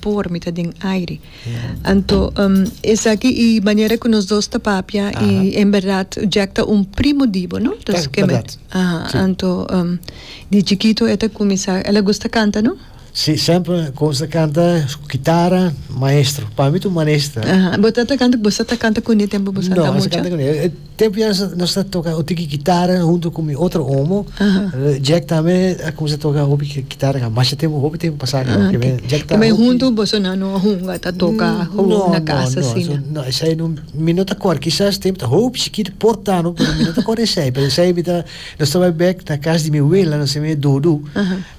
Por mi ta den aire. Anto esaki i manera ku nos dos ta papia i en berdad Jack ta un primo di bo, no? Entonces ke men. Anto di chikito e ta kuminsá el a gusta kanta, no? Si, semper konsa kanta ku kitara, maestro. Pa mi ta un maestro. Bo ta kanta ku bo sa ta kanta kuné tempu bo sa ta mucha? No, e sa kanta kuné. Tempu ya nos nos ta toka un tiki kitara huntu ku mi otro omo. Jack tambe a kuminsá toka hopi ki- kitara ka masha tempu hopi tempu pasá kaba Ah, kimen. Jack ta Kimen hopi- huntu boso nan no a hunga ta toka Mm, gewoon no, na no, kasa no, asina. eso no, esei no, mi no ta kòrda. Kisas tempu ta hopi chikitu por tano, pero mi no ta kòrda esei. Pero esei mi ta, nos ta bai bèk na kas di mi wela, nos e mi e Dudu.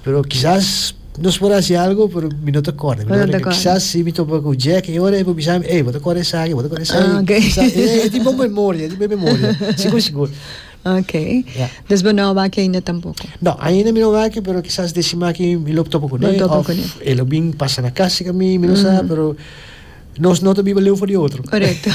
Pero kisas nos por hasi algu pero mi no ta kòrda. Mi ta kòrda kisas si mi topa ku Jack e ora e por bisa mi, ey bo ta kòrda esaki, bo ta kòrda esei. E tin bon memoria, e tin bon memoria, sigur sigur. Ok. Des bo no a wak ainda tampoko? No, ainda mi no a wak pero kisas desi maki mi lo topa kuné òf e lo bin pasa na kas di ka mi, mi no sa pero Nos no ta biba leu for di otro. Correcto.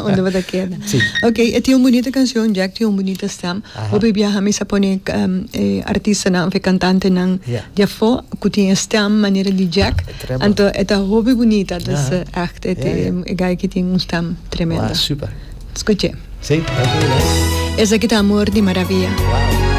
Unda bo ta keda. Sí. Ok, e tin un bonita cancion, Jack tin un bonita stem. Aha. Hopi biaha mi sa pone um, eh, artistanan of e cantantenan Ja. di afo cu tin e stem manera di Jack. Ah, tremendo. Anto e ta hopi bonita, dus Aha. eh, echt e, Ja, ja. e guy ki tin un stem Wauw, tremendo. super. Scuche. Sí, dank u, dank u. Esaki ta Amor di Maravilla. Wauw.